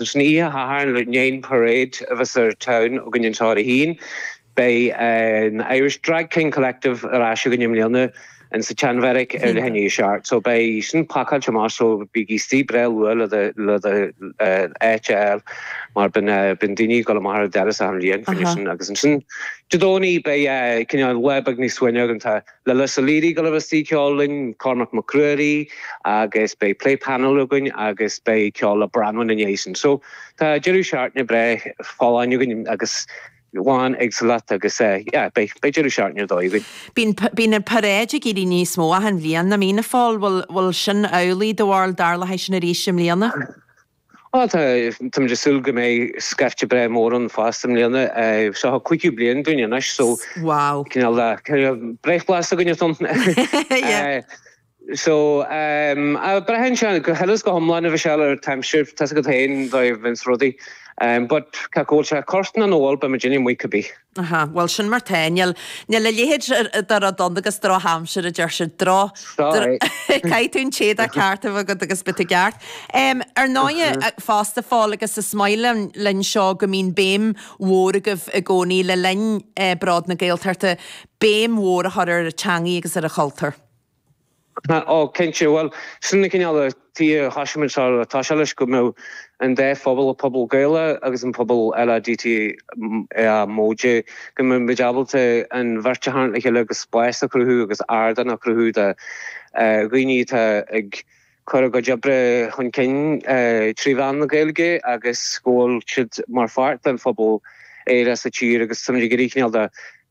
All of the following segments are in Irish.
Leis an oíche Shathairn i ndiaidh an parade a bheas ar siúl againn anseo ar 1, beidh an Irish Drag King Collective ar ais againn i mbliana in sa tSean-Bheairic ar leath i ndiaidh a seacht. So beidh sin pacáilte amach so bígí istigh breá luath le do áit a fháil mar bíonn daoine ag dul amach ar an doras achan bhliain fá choinne sin agus ansin Dé Domhnaigh beidh cineál lá beag níos suaimhní againn. Tá. La Lisa Leedy go raibh sí ceol linn, Cormac Mac Ruairí agus beidh plé painéil againn agus beidh ceol le Branwen ina dhiaidh sin. So tá deireadh seachtaine breá folláin againn agus lán éagsúlacht agus yeah, beidh deireadh seachtaine ar dóigh againn. Bíonn, bíonn an parade ag éirí níos mó achan bhliain i Mean a Phóil, bhfuil, bhfuil sin amhlaidh do bharúil dar leat sin arís i mbliana? Tá, tá. Táimid ag súil go mbeidh scaifte breá mór ann fosta i mbliana. Seo an cúigiú bliain dúinn anois so cineál breithlá againn ann. So, braitheann sé, go huile is go hiomlán a bheith seal ar an aimsir, tá's agat féin dóigh a mbíonns rudaí. But, cé acu bhfuil sé ag cur nó nach bhfuil, beidh muidinne amuigh cibith. Aha, bhuel, sin mar 'tá. Níl a leithéid de rud ann agus drochaimsir, a deir siad. Droch. Caithfidh tú an t-éadach ceart a bheith agat agus beidh tú i gceart. Ar ndóighe, fosta a Phóil, agus is maith linn seo go mbíonn béim mhór agaibh i gcónaí le linn Bród na Gaeltachta, béim mhór a chur ar an teangaidh agus ar an chultúr. Ó, cinnte. Bhuel, sin an cineál tuige a thosaigh muid ar tús leis, go mbeadh an dá phobal, an pobal Gaelach agus an pobal LADTA móide go mbeadh muid ábalta an bheirt a tharraingt le chéile agus spás a chruthú agus ardán a chruthú do dhaoine atá ag cur a gcuid oibre chun cinn trí mheán na Gaeilge agus go bhfuil siad mar pháirt den phobal aerach sa tír agus táimid ag iarraidh cineál de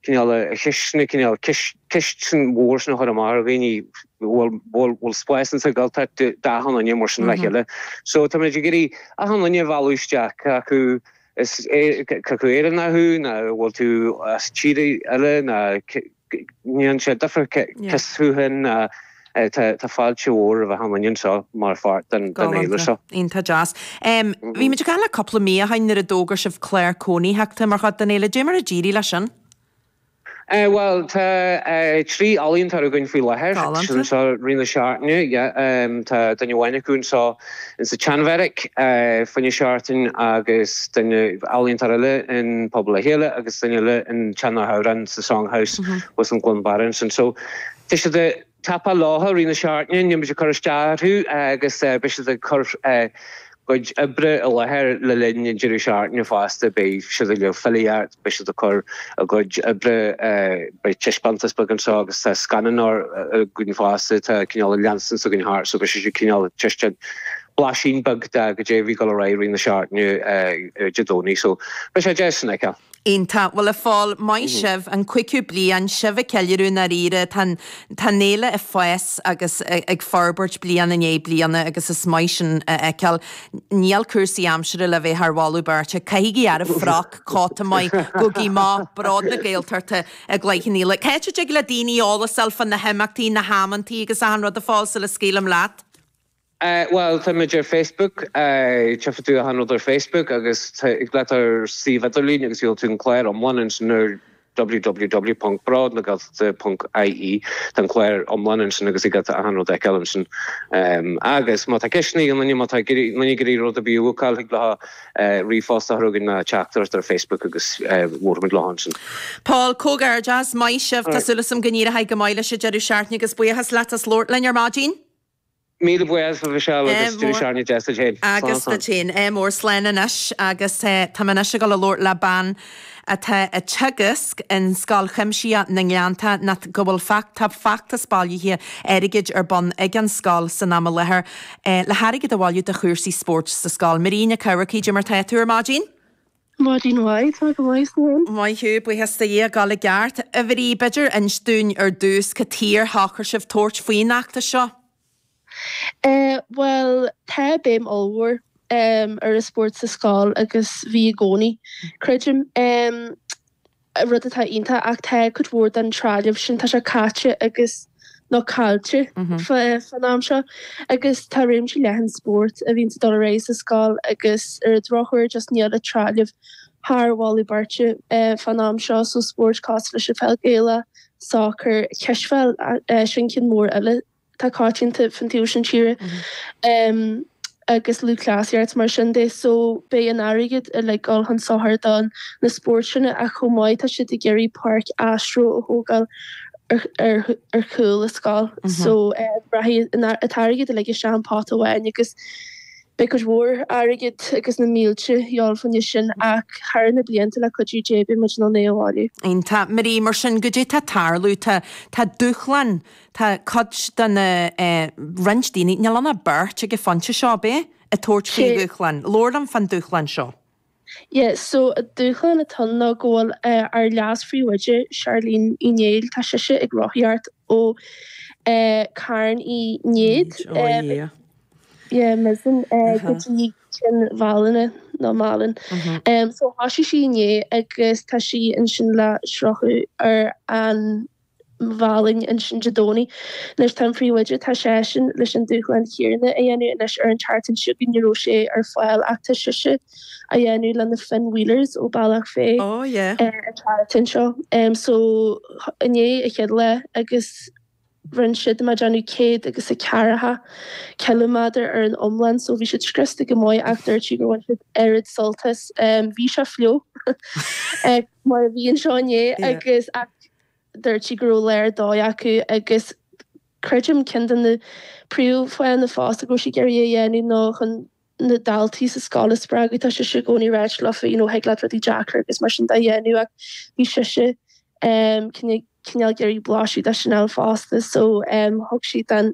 cineál a chisne, cineál ceist mhór sin a chur amach ar dhaoine bhfuil bhfuil spás ins an Ghaeltacht d'achan duine mar sin le chéile. So táimid ag iarraidh achan duine a mhealladh isteach cé acu is cé acu Éireannach thú nó bhfuil tú as tír eile ní dhéanann sé difear cé acu sin nó tá fáilte mhór roimh achan duine anseo mar pháirt den fhéile seo. Iontach deas. Bhí muid ag caint leat cúpla mí ó shin nuair a d'fhógair sibh clár cónaitheachta mar chuid den fhéile. Dé mar a d'éirigh leis sin? Bhuel tá trí ealaíontóir againn faoi láthair anseo i rith na seachtaine. Tá duine amháin acu anseo In sa tSean-Bheairic, fá choinne seachtain agus duine, ealaíontóir eile in Pobal le Chéile agus duine eile in Teach na nAmhrán sa Song House thuas in Cluain Barra ansin. So, tá siad a' tapáil leofa i rith na seachtaine, níl muid a' cur isteach orthu agus beidh siad a' cur a gcuid oibre i láthair le linn an deireadh seachtaine fosta, beidh siad a' léamh filíocht, beidh siad a' cur. a gcuid oibre. Beidh taispeántas beag anseo agus tá scannán againn fosta, tá cineál an lens againn thart so beidh sé sin cineál taispeáint, blaisín beag de caidé a bhí ag dul ar aghaidh i rith na seachtaine Dé Domhnaigh so beidh sé deas sin a fheiceáil. Iontach. Bhuel, a Phóil, maith sibh, an cúigiú bliain, sibh á cheiliúradh i ndáiríre, tá an, tá an fhéile ag fás agus ag forbairt bliain i ndiaidh bliana agus is maith sin a fheiceáil. Níl cúrsaí aimsire le bheith thar mholadh beirte, caithigí earra froc! cóta maith, gogaí maith, bród na Gaeltachta i gcluiche an Fhéile. Cá dtig le daoine eolas a fháil fá na himeachtaí, na hamanntaí agus achan rud a fáil sula scaoilim leat? Bhuel, táimid ar Facebook, tchífidh tú achan rud ar Facebook agus thig leat dul ar ár suíomh idirlín agus gheobhaidh tú an clár iomlán ansin nuair a www.brodnagaeltachta.ie tá an clár iomlán ansin agus thig leat achan rud a fheiceáil ansin. Agus má tá ceisteanna ag daoine, má tá duine ag iarraidh rud ar bith a bhucáil, thig leo ríomhphost a chur chugainn nó teachtaireacht ar Facebook agus bhuailfimid leo ansin. A Phóil, comhghairdeas, maith sibh, tá súil agam go n-éireoidh go maith leis an deireadh seachtaine agus buíochas leat as labhairt linn ar maidin. Míle buíochas, Michelle, agus duit féin. Ádh mór. Slán anois agus táim anois ag dul a labhairt le bean atá ag teagasc in Scoil Chuimsitheach na nGleannta nó go bhfuil feachtas bailithe airgid ar bun ag an scoil san am i láthair le hairgead a bhailiú do chúrsaí spóirt sa scoil. Máirín Nic Eachmharcaigh, caidé mar tá tú ar maidin. Maidin mhaith, Tá go maith, Cian. Maith thú, buíochas do Dhia, go díreach i gceart. A Mháirín, b'fheidir inis dúinn ar dtús cad chuige ar shocair sibh tabhairt faoin fheachtas seo? Eh bhuel, tá béim ollmhór ar an spórt sa scoil agus bhí i gcónaí, creidim. rud atá iontach ach tá cuid mhór den trealamh sin, tá sé caite agus, nó caillte fán am seo agus tá réimse leathan spórt a bhíonn ag dul ar aghaidh sa scoil agus ar an drochuair just níl an trealamh thar mholadh beirte fán am seo so spóirt cosúil leis an pheil Ghaelach, sacar, cispheil, sin ceann mór eile. tá coitianta fán taobh seo tíre agus lúthchleasaíocht mar sin de so beidh an airgead uilig dul chun sochair do na spóirt sin ach chomh maith tá siad ag iarraidh páirc astro a thógáil ar chúl an scoil so rachaidh an t-airgead uilig isteach sa phota amháin agus beidh cuid mhór airgead agus na mílte de dhíth fá choinne sin ach thar na blianta le cuidiú Dé beidh muid in ann é a bhailiú. Tá, Marie, mar sin caidé tá ag tarlú tá tá dúshlán tá cuid de na, eh, roinnt daoine, níl ann ach beirt ag an phointe seo, ab é? ag tabhairt faoin dúshlán. Labhair liom fán dúshlán seo. Yeah, so an dúshlán atá ann ná go bhfuil, eh, ár leas-phríomhoide, Charlene Uí Néill, tá sise ag rothaíocht ó, eh, Carn Uí Néid, Néid, oh em, yeah. yeah, Mizen, eh, go Uh-huh. dtí Cionn Mhálanna, nó Málainn. Mhm. Em, so thosaigh sí inné agus tá sí ansin le sroicheadh ar an Mhálainn ansin Dé Domhnaigh. Anois tá an príomhoide, tá seisean leis an dúshlán chéanna a dhéanamh anois ar an tseachtain seo chugainn, ní raibh sé ar fáil ach tá sise á dhéanamh le na Finn Wheelers ó Bealach Féich ar an tseachtain seo. So inné an chéad lá agus rinne siad, má déanamh céad agus a ceathracha ciliméadar ar an iomlán so bhí siad scriosta go maith ach dúirt sí gur bhain siad oiread sult as, bhí sé fliuch mar a bhí anseo inné agus, ach. dúirt sí go raibh léar dóigh acu agus creidim ceann de na príomhfháthanna fosta go raibh sí ag iarraidh é a dhéanamh ná chun na daltaí sa scoil a spreagadh tá sise i gcónaí ag ráit leofa you know thig leat rudaí deacra agus mar sin de a dhéanamh ach bhí sise cineál ag iarraidh blaiseadh de sin a fháil fosta so thug siad an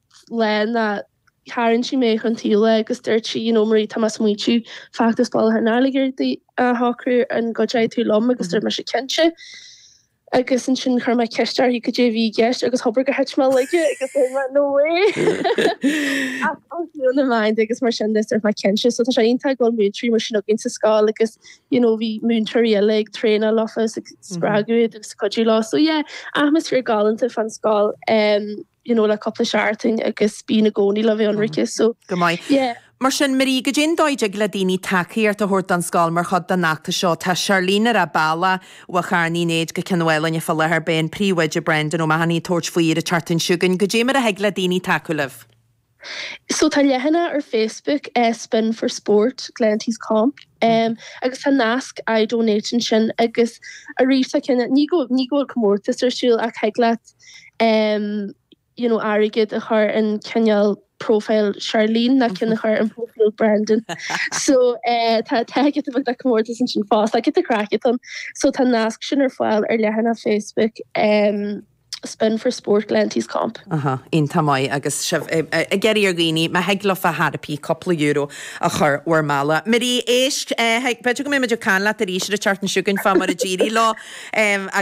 le ná tharraing sí mé chun taoibhe agus dúirt sí you know Marie tá mé smaointiú feachtas bailithe airgid a shocrú an gcuideoidh tú liom agus dúirt mise cinnte agus ansin chuir mé ceist uirthi cad é a bhí i gceist agus hóbair gur thit mé i laige agus dúirt mé no way ach an fiú na mbeinn agus mar sin dúirt mé cinnte so tá sé iontach go bhfuil múinteoirí mar sin againn sa scoil agus you know bhí múinteoirí eile ag traenáil leofa is ag spreagadh iad agus cuidiú leo so yeah atmaisféar galánta fán scoil. you know le cúpla seachtain agus bíonn i gcónaí le bheith ionraic so go maith yeah. Mar sin, Marie, cad é an dóigh a dtig le daoine tacaíocht a thabhairt don scoil mar chuid den fheachtas seo. Tá Charlene ar a bealach ó Charn Uí Néid go Cionn Mhálanna faoi láthair. Beidh an príomhoide Brendan O'Mahony ag tabhairt faoi ar an tseachtain seo chugainn. Cad é mar a thig le daoine tacú libh. So tá leathanach ar Facebook, Spin for Sport, Glenties Comp, agus tá nasc I donate ansin agus arís tá ceann, ní go ní go bhfuil comórtas ar siúl ach thig leat you know airgead a chur in cineál profile Charlene nó ceann a chur in profile Brendan. So tá tá giota beag de chomórtas ansin fosta, giota craic ann. So tá nasc sin ar fáil ar leathanach Facebook. spin for sport glanties comp. Iontach maith agus sibh ag iarraidh ar dhaoine, má thig leofa ar chor ar bith, cúpla euro a chur bhur mbealach. Marie, éist, b'fhéidir go mbeidh muid ag caint leat arís ar an tseachtain seo chugainn fá mar a d'éirigh leo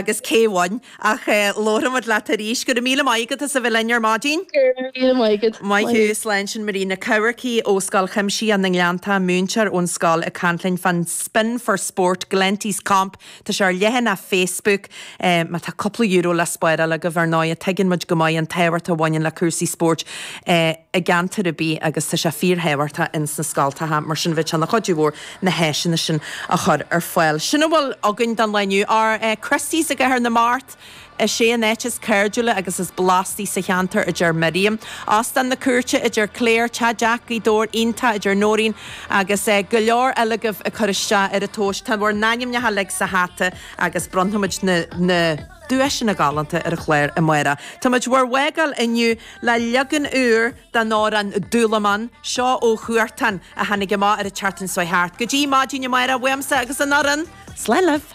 agus cé bhain ach labharfaidh muid leat arís. Go raibh míle maith agat as a bheith linn ar maidin. Go raibh míle maith agat. Maith thú, slán sin Marie Nic Eachmharcaigh ó Scoil Chuimsitheach na nGleanntach, múinteoir ón scoil ag caint linn fán spin for sport glanties comp. Tá sé ar leathanach Facebook. Má tá cúpla euro le spáráil agaibh, ar ndóighe, tuigeann muid go maith an tábhacht a bhaineann le cúrsaí spóirt i gceantar ar bith agus tá sé fíorthábhachtach ins na scoltacha, mar sin bheadh sé ina chuidiú mhór na háiseanna sin a chur ar fáil. Sin a bhfuil againn don lá inniu. Ar Christy's i gCathair na Mart! Is é an áit is cairdiúla agus is blastaí sa cheantar, a deir Miriam. Óstán na Cúirte, a deir Clare. Teach Jack, Gaoth Dobhair iontach, a deir Nóirín. Agus go leor eile agaibh ag cur isteach ar an tomhas. Tá bhur n-ainmneacha uilig sa hata agus bronnfaimid na duaiseanna galánta ar an chlár amáireach. Táimid bhur bhfágáil inniu le leagan úr den amhrán Dúlamán, seo ó Huartan, a tháinig amach ar an tseachtain seo thart. Go dtí maidin amáireach, uaimse agus an fhoireann, slán libh!